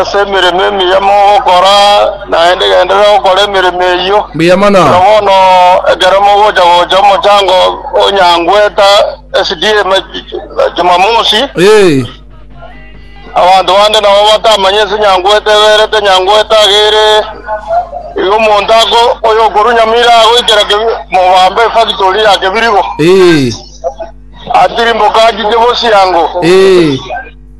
Ase emeremo emiya mogokora, naende genderera gokora emeremo eyio. Mbuya mono. Buna bono ekero mogocha gocha omochango o Nyangweta SDA ma- Jumamosi, Eh, abanto bande nabo batamanya ense Nyangweta eberete, Nyangweta agere igo omonto ako oyo okorwa Nyamira agoikera Kebi- Mobambe efactory ya Kebirigo. eh, Atirimboka achiche bosiango. eh.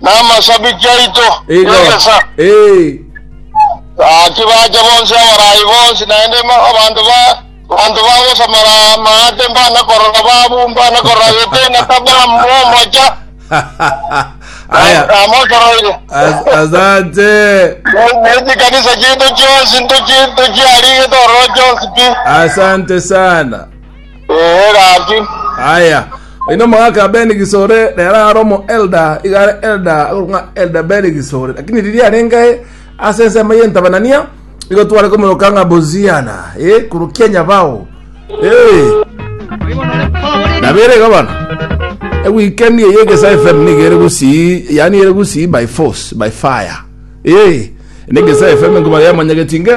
namasabiki aito, Igo. nyegesa. Ee. Gaki bache bonsi abaraai bonsi, naende ma- abanto ba abanto bagosamara amaate mbana korora babu, mbana korora gete na tabamu omocha, Aya. namosoroire. As- Asante. Neti kanisa chiito chionsi ntochi ntochiarigete ororo chionsi pi. Asante sana. Ee, gaki. Aya. Ino omogaka Ben Gisore rero are omo elder iga are elder agorwa elder Ben Gisore lakini riria arenge ase ensemo ye ntabanania igo tware komoroka ng'a Boziana eh kurukia nyabao eh nabere igo bono ewikendi eye egesa fm niga ere gusii yani ere gusii by force by fire eh ene egesa fm ngoma yamanyagetinge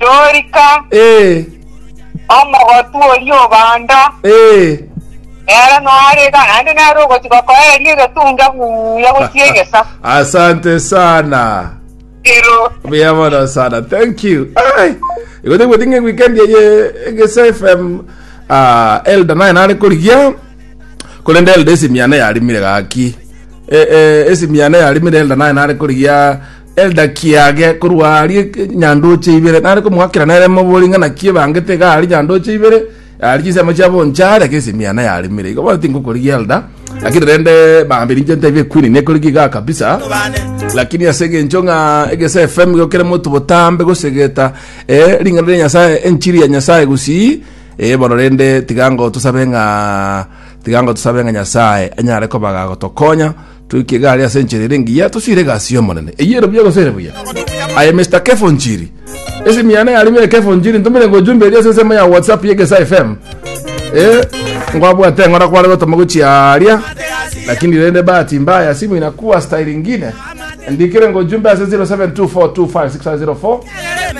Dorika, Ee, omogotu oria obanda, ee, nere noarega naende nare ogochika koeria egetunga buya gochia egesa. asante sana Ero, buya mono sana thank you Ai, igo tegweti ng'a weekend eye egesa fm ah, elda naye nare korigia korende elda esimiane yarimire gaki Eh, eh, esimiane yarimire elda naye nare korigia Eldaki yage korwa aria nyandoche ibere, nare komoakera nere mobori ng'a naki ebangete iga aria nyandoche ibere, aria chinsemo chia boncha aria ase esemiana yaremire. Igo bono tingokorigia elda, lakini rende bambe ninche ntebie ekwini nekorigia igaa kabisa. Lakini ase egencho ng'a egese FM igo kere monto botambe gosegeta eh, ring'ana ria Nyasaye, enchiri ya Nyasaye gusii, eh, bono rende tiga ngo tosabe ng'a tiga ngo tosabe ng'a Nyasaye anyare kobaga gotokonya Toike egari ase enchera ere engiya tosire egasi y'Omonene. Eyio ere buya gose ere buya? Aye Mr. Kefo Njiri. Ase emiana yarimo ere Kefo Njiri ntomere ngo ojumbe eria ase ensemo ya WhatsApp ya Egesa FM. Eh, ngwabwate ng'ora kware gotoma gochia aria. Lakini rende bahati mbaya simu inakuwa style ingine. Ndikire ngo ojumbe ase 0724256504.